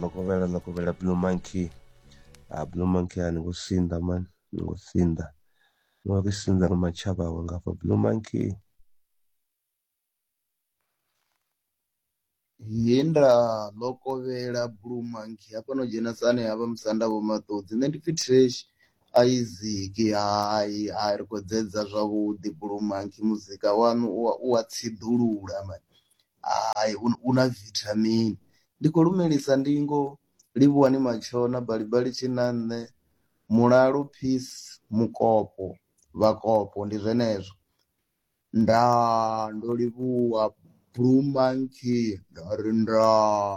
makovhela makovhela blue monkey a ah, blue monkey a ni ngo sinḓa mani ni ngo sinḓa ni wa ri sinḓa nga matshaba awe ngafha blue monkey he nda ḽo kovhela blue monkey hafha no dzhena sane havha musanda vho maṱodzi nṋe ndi pfi trash isaac hai hai ri khou dzedza zwavhuḓi blue monkey muzika wanu u wa tsiḓulula mani Hai, u, u na vithamini. Ndi khou lumelisa ndingo, Livhuwani Matshona, Balibali Tshinanṋe, Mulalo Peace, Mukopo, Vhakopo, ndi zwenezwo. Ndaa, ndo livhuwa Blue Monkey, nda ri ndaa.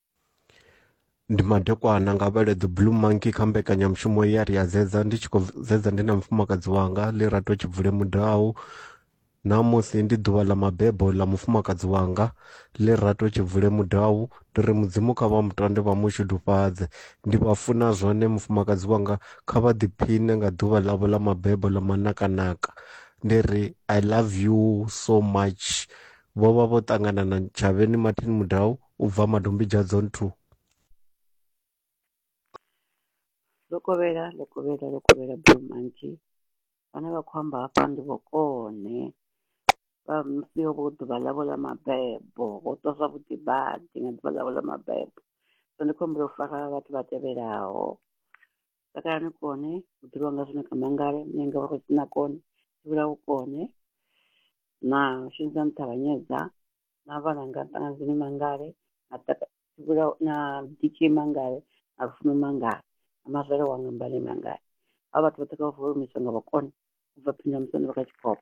ndi madekwana nga vhele the blue monkey kha mbekanyamushumo ya ri a zedza ndi tshi khou zedza ndi na mufumakadzi wanga ḽi rato tshi bvule mudau ṋamusi ndi ḓuvha ḽa mabebo ḽa mufumakadzi wanga ḽi rato tshi bvule mudau ndi ri mudzimu kha vha mutande vha mushudufhadze ndi vha funa zwone mufumakadzi wanga kha vha ḓiphiṋe nga ḓuvha ḽavho ḽa mabebo ḽa manakanaka ndi ri i love you so much vho vha vho ṱangana na tshavheni martin mudau u bva Madombidzha Zone 2. Lokovhela, Lokovhela, Lokovhela Blue Monkey, vhane vha khou amba hafha ndi vhokone vha musi ho vho ḓuvha ḽavho ḽa mabebo ho ṱwa zwavhuḓi badi nga ḓuvha ḽavho ḽa mabebo so ndi khou humbela u fara vhathu vha tevhelaho takalani kone u ḓivhiwa nga zwino kha mangale munyanga vha khou sina kone tshivhula u kone na shumisa nṱhavhanyedza na vhalanga ṱangazini mangale na taka- Vhula- na diki mangale na lufuno mangale na mazwale wanga mbale mangale ha vhathu vhoṱhe kha vha vuwe mishonga vhakone u bva phini ya musanda vha kha tshikolo